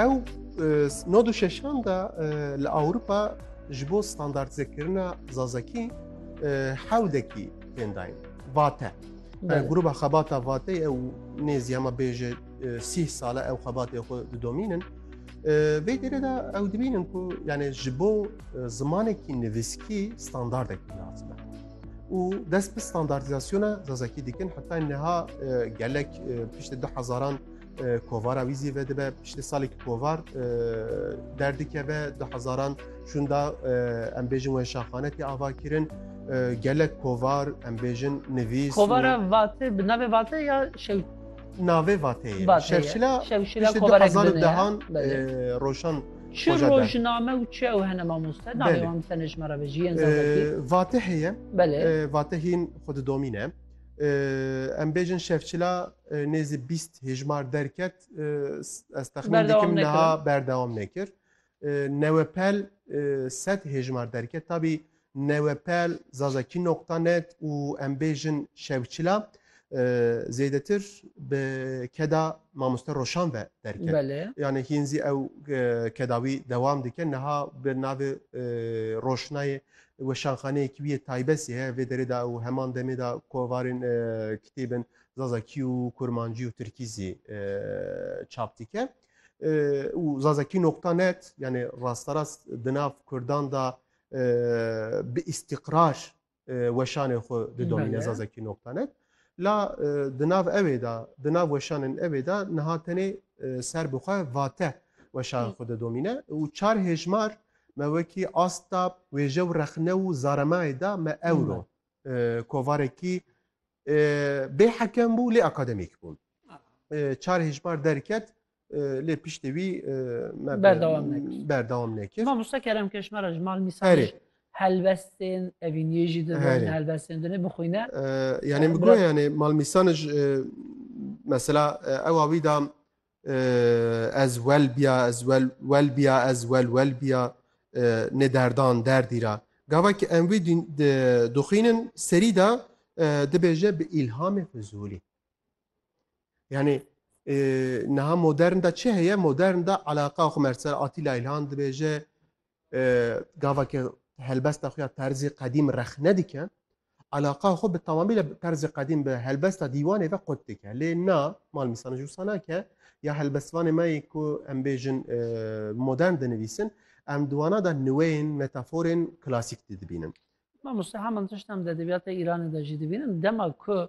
Ew nod û şeşan da li Ewropa ji bo standartizekirina zazakî hewdekî tên dayîn. Vate. Gruba xebata vatê ew nêzî hema bêje sîh sale ew xebatê xwe didomînin. Vê dêrê de ew dibînin ku yani ji bo zimanekî nivîskî standardekî lazim e. û dest bi standartîzasyona zazakî dikin heta niha gelek piştî du hezaran kovara wî zî vedibe piştî salekî kovar derdikeve du hezaran şûn da em bêjin we şaxane tê avakirin gelek kovar em bêjin nivîs kovara vatê bi navê vatê ya şew navê vatê şevşila şevşila kovara dehan roşan Çi Hoca der. rojname û çi ew hene mamoste? Navê Belê. wan bise nejme re vejî yên zazakî. Ee, Vate heye, Belê. ee, vate hîn xwe didomîne. Ee, Em bêjin şevçila ee, nêzî bîst hêjmar derket. Ee, s- Ez texmîn Berdewam dikim nekirin. niha berdewam nekir. Ee, Newepel ee, sed hêjmar derket. Tabî Newepel zazakî noqta net û em bêjin şewçila zêdetir bi keda mamoste Roşan ve derket. Belê. Yani hîn zî ew keda wî dewam dike. Niha bi navê Roşnayê weşanxaneyekî wî yê taybesî heye vê derê de û heman demê de kovarên kitêbin zazakî û kurmancî û tirkî zî çap dike. û zazakî noqta net yani rasterast di nav kurdan de bi îstîqrar weşanê xwe didomîne zazakî noktanet. La di nav ewê de di nav weşanên ewê de niha tenê ser bi xwe vate weşan xwe didomîne û çar hêjmar me wekî asta wêje û rexne û zaremayê de me ewro kovarekî bê hekem bû lê akademîk bûn. Çar hêjmar derket lê piştî wî me Berdewam nekir. berdewam nekir. Mamosta Kerem Keşmera ji mal mîsan Herê. ji helbestên evîniyê jî di Herê. helbestên dinê bixwîne. Ee, yani Ee, bu bırak- yani malmisan e, mesela e, ewa wî da e, ez wel biya ez wel wel biya ez wel wel biya e, ne derdan derdî ra gava ki em wî dîn- di- dixwînin serî da e, dibêje bi îlhamê Fizulî Yani e, niha modern da çi heye? Modern da alaka xwe merser Atîla İlhan dibêje e, gavakê helbesta xwe ya terzê qedîm rexne dike. Alaka xwe bi tamamî li terzê qedîm bi helbesta dîwanê ve qut dike. Lê na mal mîsana jûsana ke ya helbestvanê me yê ku em bêjin e, modern dinivîsin em diwana da niweyên metaforên klasîk didibînin. Mamoste heman tişt em de edebiyata Îranê de jî dibînin dema ku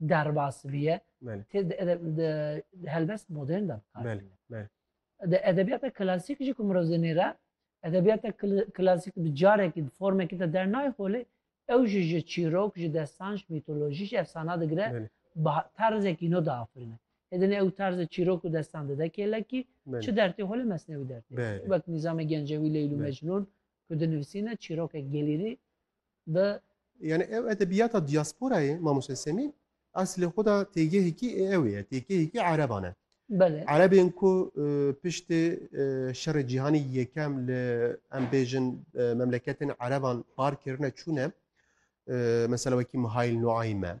derbas biye tê di helbest modern de di edebiyata klasîk jî ku mirov zinêre edebiyata klasîk bi carekî bi formekî de dernayê xolê ew jî ji çîrok ji destan ji mîtolojî ji efsana digire tarzekî no diafirine Hêdinê ew tarzê çîrok û destan dide kêlekî çi dertê holê mesnewî dertê wek nîzamê gencewî Leyl û Mecnûn ku dinivisîne çîrokek gelîrî Bi. Yani ev edebiyata diasporayê Mamoste Semî eslê xwe de têgehekî ê ew ye, têgehekî ereban e. Belê. Erebên ku e, piştê e, şerê cîhanî yekem li em bêjin e, memleketên ereban par kirine çûne. E, Mesela wekî Mihail Nuaym e.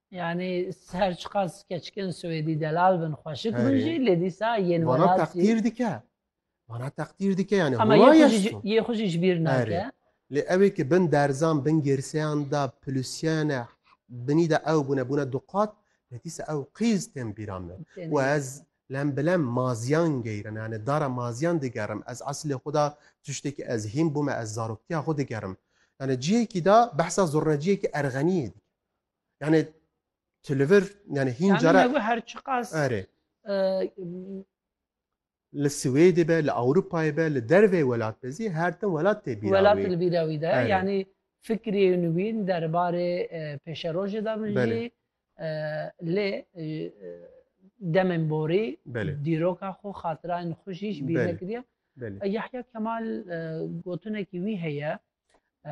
Yani her çiqas keçkin Swêdî delal bin xweşik bin jî lê dîsa yên Vana teqdîr dike. Vana teqdîr dike yani Ama yê xwe jî ji bîr nake. Lê ew ê ki bin derzan bin girseyan de pilisiyane binî de ew bûne bûne duqat lê dîsa ew qîz tên bîra min û ez lem bi lem maziyan geyrin yani dara maziyan digerim ez eslê xwe da tiştekî ez hîn bûme ez zaroktiya xwe digerim yani cihêkî da behsa zurneciyekî erxeniyê dike Yani tu li vir yani hîn Yani cara ew her çiqas erê e, li Swêdê be, li Ewropayê be, li dervê welat be zî her tim welat tê bîra welat wî. li bîra wî de Erê. yanî fikrê nûwîn derbarê e, pêşerojê de min Belê. jî e, lê e, e, demên borî Belê. dîroka xwe xatirayên xwe jî ji bîr Belê. nekiriye. Belê. E, Yahya Kemal e, gotinekî wî heye e,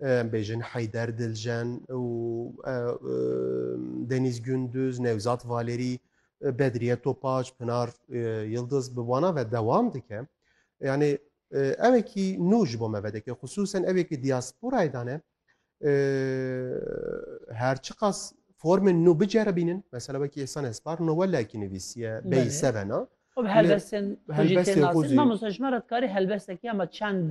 Em bêjin Heyder Diljen û Denîz Gunduz, Newzat Valerî, Bedriye Topaç, Pinar Yildiz bi wana ve dewam dike. Yanê evekî nû ji bo me vedike. Xisûsen evekî diasporayê de ne her çiqas formên nû biceribînin. Mesela wekî Îhsan Espar Nowellakî nivîsiye bey sevena. Helbestên xwe jî tê nasin. Mamosta ji me re dikarî helbestekî hema çend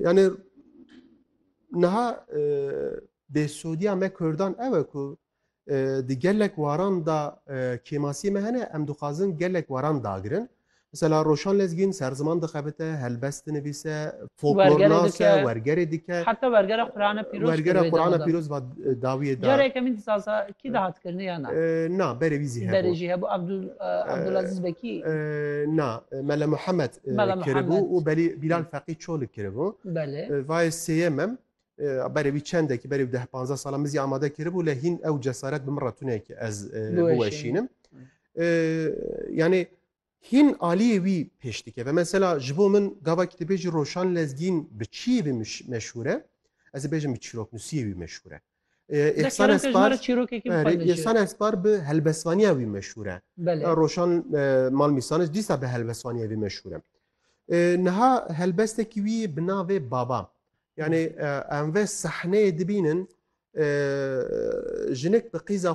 Yani niha bêsûdiya me Kurdan ew e ku di gelek waran da kêmasiyê me hene em dixwazin gelek waran dagirin. Mesela Roşan Lezgîn serziman dixebite, helbest dinivîse, folklor nase, wergerê dike. Heta wergera Qurana pîroz. Wergera Qurana pîroz va dawiyê da. Careke min disaza kî de hat kirni ya na. Na berê wî zî hebû. Berê jî hebû Abdulaziz Bekî. Na Mele Muhammed. kiribû û belî Bîlal Feqî Çolik kiribû. Vayê sêyem em berê wî çendekî berê deh panzdeh salan min zî amade kiribû lê hîn ew cesaret bi min re tune ki ez biweşînim. Yanê hîn aliyê wî pêş dikeve. Mesela ji bo min gavakî tu bêjî Roşan Lezgîn bi çiyê wî meşhûr e, ez ê bêjim bi çîroknusiyê wî meşhûr e. Îhsan Espar Îhsan Espar bi helbesvaniya wî meşhûr e. Roşan mal mîsanis dîsa bi helbesvaniya wî meşhûr e. Niha helbestekî wî bi navê Baba. Yani em ve sahneyê dibînin jinik bi qîza